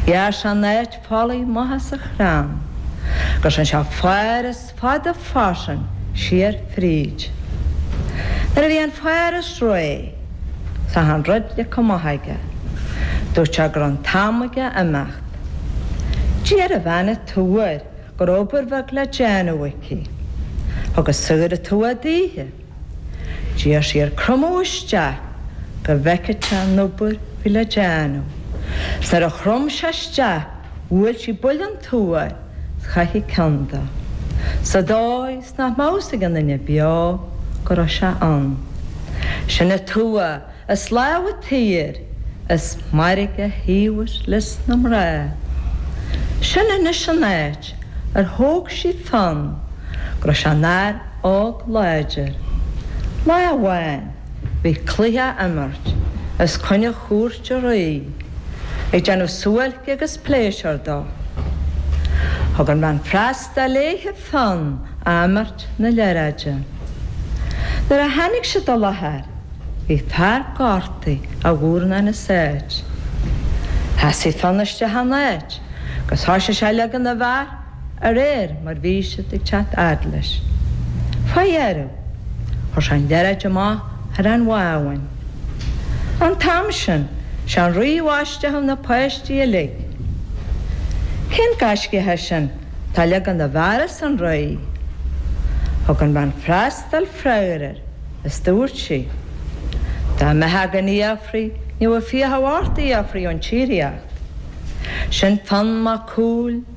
Ghearr sé áit folaigh maith sa chrann agus rinn sé fáras fada fairsing siar fríd. Nuair a bhí an fáras réidh is achan rud leagtha amach aige. Dúirt sé go raibh an t-am aige imeacht. D'iarr an bhean an tua go raibh obair bheag le déanamh aici. Thug an saor an tua daoithe. D'iarr sí air cromadh isteach go bhfeicfeadh sé an obair a bhí le déanamh. Is nuair a chrom sé isteach bhuail sí buille den tua air is chaith sí an ceann de, sa dóigh is nach mbeadh fhios ag aon duine beo go raibh sé ann. Sin an tua. Is labhraítear is mairg a thaobhas leis na mná. Sin anois an áit ar thóg sí Fionn go raibh sé ina fhear óg láidir. Lá amháin bhí cluiche á imirt os coinne chúirt an rí ag déanamh suáilce agus pléisiúr dó. Thug an bhean freastail. léithe Fionn a imirt na liathróide. Nuair a tháinig siad i láthair bhí fear gortaithe, a mhurnán as áit. Sheasaigh Fionn isteach ina áit agus thoisigh sé a leagan na bhfear a réir mar bhí siad ag teacht fhad leis. Fá dheireadh chuir sé an liathróid amach thar an bhábhún. An t-am sin, sé an rí a bhaisteadh na páistí uilig. Cén gaiscíoch é sin atá ag leagan na bhfear arsa an rí? Thug an bhean freastail freagar air is dúirt sí, Dá mbeadh againn fhiafraí ní bheadh fiachaibh ort a fhiafraí ón tsíoraíocht. Sin Fionn Mac Cumhaill.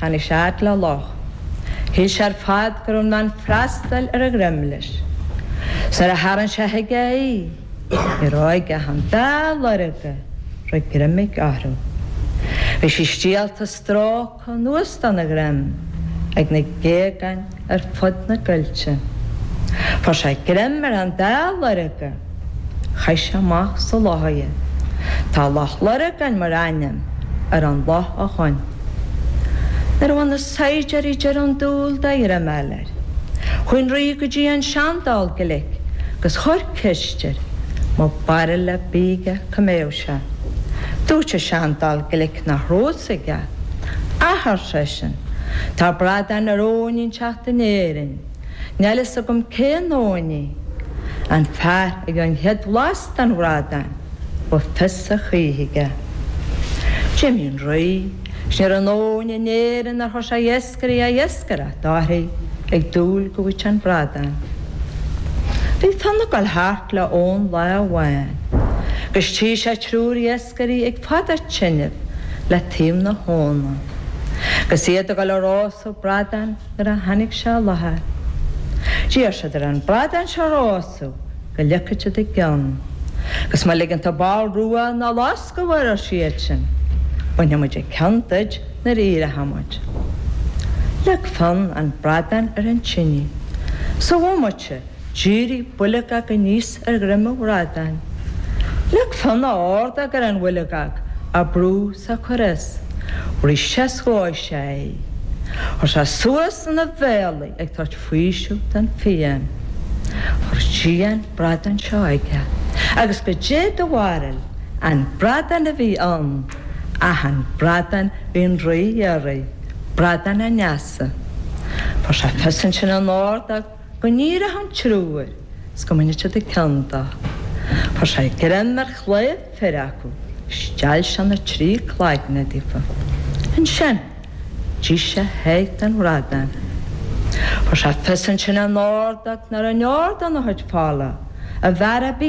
Tháinig sé fhad le loch. Shíl sé ar fad go raibh an bhean freastail ar a dhroim leis. Nuair a tharraing sé chuige í, ní raibh aige ach an dá lorga a raibh greim aige orthu. Bhí sí stiallta stróicthe anuas dena dhroim ag na géagáin. ar fud na gcoillte. Fuair sé greim ar an dá lorga is chaith sé amach sa loch iad. Tá Loch Lorgan mar ainm ar an loch ó shoin. Nuair a bhain na saighdiúirí deireadh dúil de ghreim a fháil air. Chuaigh an rí go dtí an seandall glic agus chuir ceist air an raibh barúil ar bith aige cá mbeadh sé. Dúirt an seandall glic nach raibh fhios aige. Ach arsa seisean, tá bradán ar abhainn inteacht in Éirinn. Níl fhios agam cén abhainn í. An fear a gheobhaidh an chéad bhlas den bhradán, beidh fios a choíche aige. D'imigh an rí, is ní raibh aon abhainn in Éirinn nár chuir sé iascairí a iascaireacht uirthi, ag dúil go bhfaigheadh sé an bradán. Bhí Fionn ag dul thart le abhainn lá amháin, agus tchí sé triúr iascairí. iascairí ag fadú tineadh le taobh na habhann agus iad ag dul a rósadh bradáin nuair a tháinig sé i láthair. D'iarr siad air an bradán seo a rósadh go leagfadh siad a gceann agus má ligeann tú ball rua ná loscadh air arsa siadsan bainfimid an ceann duid nuair a éireochaimid. Leag Fionn an bradán ar an tine sa bhomaite. D'éirigh boilgeog aníos ar dhroim an bhradáin. Leag Fionn a ordóg ar an bhoilgeog, bhrúigh sé ar gcúl ar ais arís é is dhóigh sé é. Chuir sé suas ina bhéal í ag tabhairt faoiseamh don phian. Chuir sí an bradán seo aige agus goidé do bharúil an bradán a bhí ann, ach an bradán a bhí an rí a iarraidh, bradán an easa. Fuair sé fios ansin ina ordóg. Go n-éireodh an triúr 's go mbainfeadh siad an ceann dó. Fuair sé greim ar chlaíomh fir acu 's steall sé na trí cloigne díobh. Ansin d'ith sé a sháith den bhradán. Fuair sé fios ansin ina ordóg nuair a n-ardadh na hoidphealla a bhfear a.